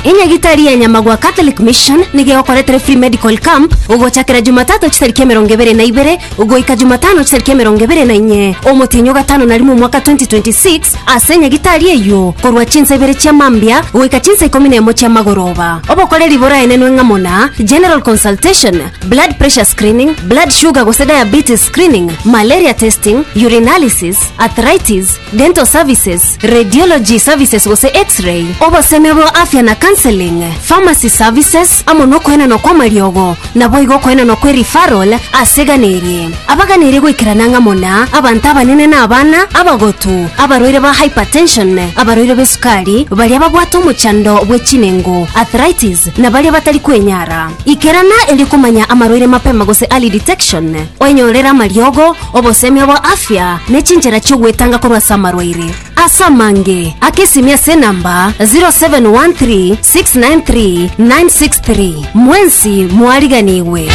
Enyagitari ya Nyamagwa Catholic Mission nigo egokoretera free medical camp ogochakera Jumatatu chitariki emerongo ebere na ibere goika Jumatano chitariki emerongo ebere na inye omotienyi o gatano na rimo omwaka 2026 ase enyagitari eyio korwa chinsa ibere chia mambia goika chinsa ikomi na emo chia magoroba. Obokoreri boraenenwe ng'amo na general consultation, blood pressure screening, blood sugar gose diabetes screening, malaria testing, urinalysis, arthritis, dental services, radiology services gose X-ray, obosemi bwa afya na counseling, pharmacy services, amo nokoenanwa kw'amariogo, naboigo okoenanwa kwe referral ase egana eri. Abaganeirie goikerana ang'amo na, abanto abanene na abana, abagotu, abarwaire ba hypertension, abarwaire b'esukari, baria babwate omochando bwe chinengo, arthritis, na baria batari kwenyara. Ikerana erio komanya amarwaire mapema gose early detection. Oenyorere amariogo, Obosemi obo afya ne chinchera chi'ogwetanga korwa ase amarwaire ase amange. Aka esimi ase enamba 0713693963 mwensi mwariganigwe.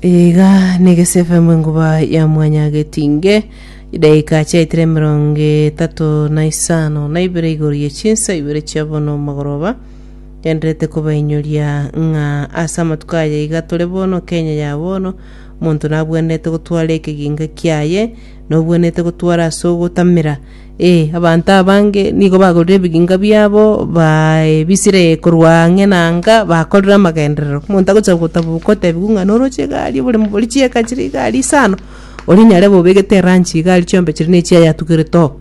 Iga negese FM enkuba ya mwanya getinge chidaika chiaitire emerongo etato na isano na ibere igoro ye chinsa ibere chia bono magoroba Gendererete kobainyoria ng'a ase amatuko aya iga tore bono, Kenya ya bono, omonto nabwenerete gotwara ekeginga kiaye, nobwenerete gotwara ase ogotamera. Ee, abanto abange nigo bagorire ebiginga biabo, baebisire korwa ang'e na anga, bakorire amagenderero. Omonto agocha gotaba gotebiwa ng'a noroche egari, oboremo boria chieka chiria igari isano, oria nyare bobegete eranchi, igari chiombe chiria ne echia yatugerete oo.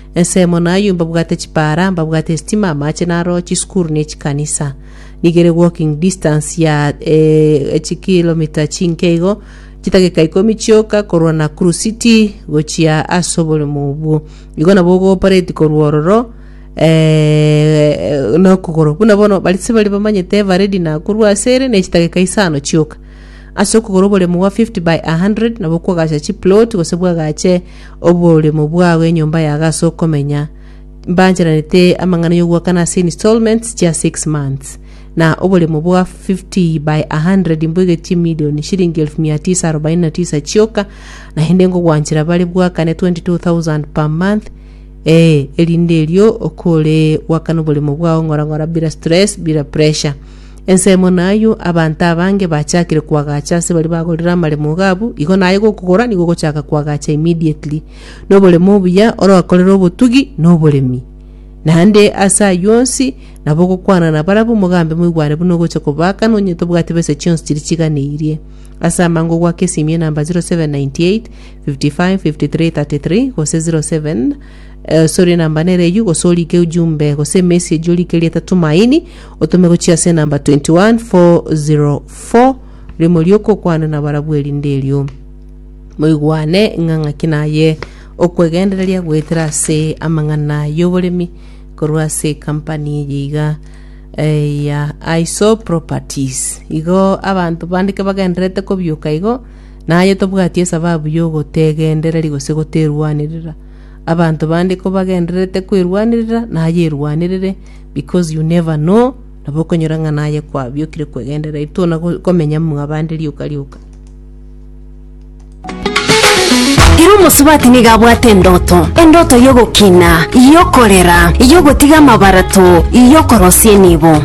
Ensemo nayio mbabwate chipaara, mbabwate esitima, amache naro, chisukuru ne chikanisa. Nigere walking distance ya eh, echikilomita chinke igo, chidageka ikomi chioka korwa Nakuru City gochia ase oborimo obwo. Igo nabo ogopareti korwa ororo eh, nokogoro. Buna bono baritse bari bamanyete eveready nakorwa ase ere ne chidageka isano chioka. Ase okogora oboremo bwa 50 by 100 nabo kwagacha chiplot gose bwagache Oboremo bwao enyomba yago ase okomenya, mbancheranete amang'ana y'ogoakana ase installments chia six months, na oboremo bwa fifty by a hundred mboigetie million shilingi elfu mia tisa arobaini na tisa chioka, naende ngogwanchera bare bwakane twenty two thousand per month, ee, erinde erio okore gwakana oboremo bwao ng'ora ng'ora bira stress, bira pressure. Ensemo nayio, abanto abange bachakire koagacha ase baria bagorire amaremo iga abwo, igo naye gokogora nigo ogochaka koagacha immediately. Noboremo obuya orokorere obotugi na oboremi. Naende ase ayio onsi, nabo ogokwana na barabwo mogambe moigwane buna ogocha kobaka nonye tobwati besa chionsi chiria chiganeirie. Ase amango ogwake esimie namba 0798 55 53 33 gose 07 Eh, sori enamba nere eyio gose orike ujumbe gose emesi eji orike rieta tumaini otome gochia ase enamba 21404 rimo rioka okwane na barabwo erinde erio moigwane ng'a ng'aki naye okwegendereria goetera ase amang'ana y'oboremi korwa ase kampani eye iga eh, ya iso properties igo abanto bandike bagenderete kobioka igo naye tobwati esababu y'ogotegendereri gose goterwanerera Abanto bande kobagendererete kwerwanerera nayerwanerere because you never know nabo okonyora ng'a naye kwabiokire kwegenderera intwe ona go- komenya mwabande rioka rioka. Ira omosubati nigo abwate endoto endoto y'ogokina y'okorera y'ogotiga amabarato y'okorosia enibo